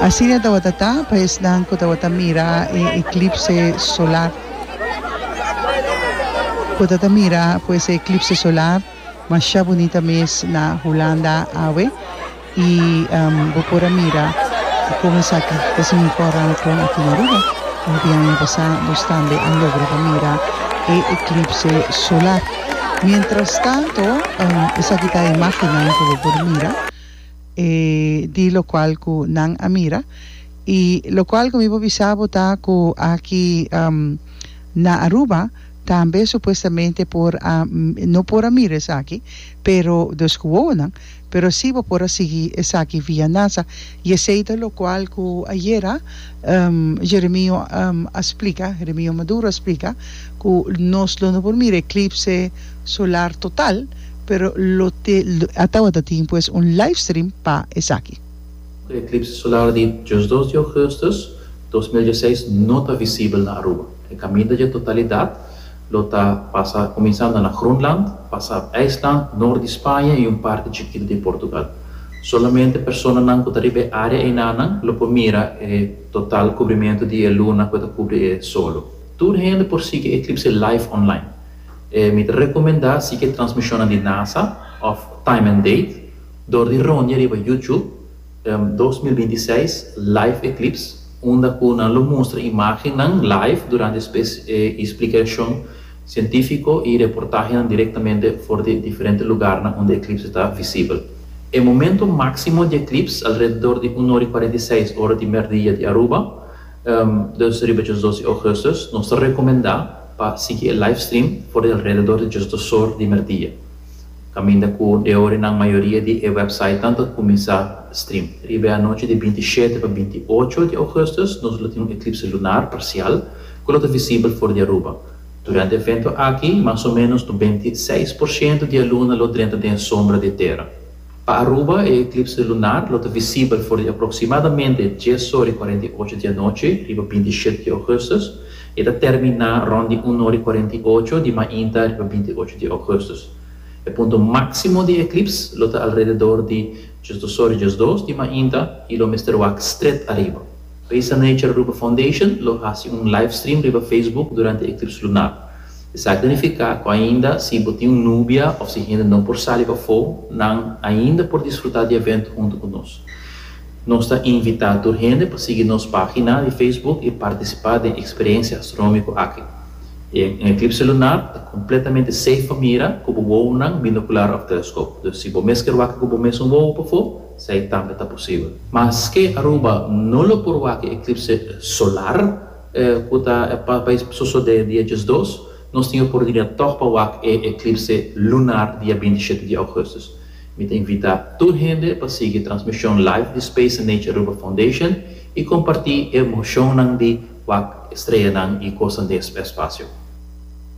Asina tabata ta pa esnan ku tabata mira e eklipse solar. Ku ta ta mira pues e eklipse solar, masha bunita mes na Hulanda awe. Y bo por a mira con esaki ta significa ora nan ton aki na Aruba un biaña pasá nos tambe a logra pa mira e eclipse solar. Mientras tanto esaki ta e imágennan cu bo por mira di locual cu nan a mira y locual cu mi por bisa bo ta cu aki na Aruba tambe supuestamente por a no por a mira esaki pero dos guoguonan Pero si bo por a sigui esaki via nasa y esey ta locual cu ayera Jeremio a splica, Jeremio Maduro a splica cu nos lo no por mira eclipse solar total pero lo te a tawata tin pues un live stream pa esaki. E eclipse solar di diosdos di augustus dos mil dieseis no ta visibel na Aruba. E caminda dje totalidad Lo ta pasa kuminsando na Groenland, pasa IJsland, nort di Spaña i un parti chikitu di Portugal. Solamente personanan ku ta riba e área einanan lo por mira e total kubrimentu di e luna ku e ta kubri e solo. Tur hende por sigui e eklipse live online. Mi ta rekomendá sigui e transmishonnan di nasa òf Time and Date dor di rondi riba YouTube. dos mil binti seis Live Eclipse, unda cu nan lo mustra imagennan live durante e splicacion cientifico y reportahenan directamente for di diferente lugarnan unda eclipse ta visibel. E momento maximo di eclipse alrededor di un ora y cuarenta y seis ora di merdia di Aruba, dus riba djos dos di Augustus. Nos ta recomenda pa sigui e livestream for di alrededor di djos dosor di merdia. Caminda cu de ora nan mayoria di e websitenan ta cuminsa stream. Riba e anochi di binti shete pa binti ocho di augustus nos lo tin un eclipse lunar parcial cu lo ta visibel for di Aruba. Durante e evento aki mas o menos nobenta i seis por shento di e luna lo drenta den e sombra di e tera. Pa Aruba e eclipse lunar lo ta visibel for di aproximadamente dies ora i cuarenta i ocho di anochi riba binti shete di augustus E ta terminá rònt di un ora i kuarenta i ocho di mainta riba binti i ocho di ougùstus. E punto máksimo di eklips lo ta alrededor di djus dos ora i djus dos di mainta i lo mester wak stret ariba. Risa Nature Aruba Foundation lo hasi un livestream riba Facebook durante eklips luná. Esaki ta nifiká ku ainda si bo tin un nubia òf si hende no por sali pafó, nan ainda por disfrutá di evento huntu ku nos. Nos ta invitá tur hende pa sigui nos página di Facebook i partisipá den eksperensia astronómiko aki. E un eklipse lunar ta kompletamente seif pa mira ku bo wowonan, binokular òf teleskop. Dus si bo mes kier wak ku bo mesun wowo pafó, esei tambe ta posibel. Maske Aruba no lo por wak e eklipse solar ku ta pa pa sosodé dia diesdos, nos tin e oportunidat tòg pa wak e eklipse lunar dia binti shete di ougùstus. Mi ta invitá tur hende pa sigui transmishon live di Space and Nature Aruba Foundation i kompartí e emoshonnan di wak estreanan i kosnan den e spasio.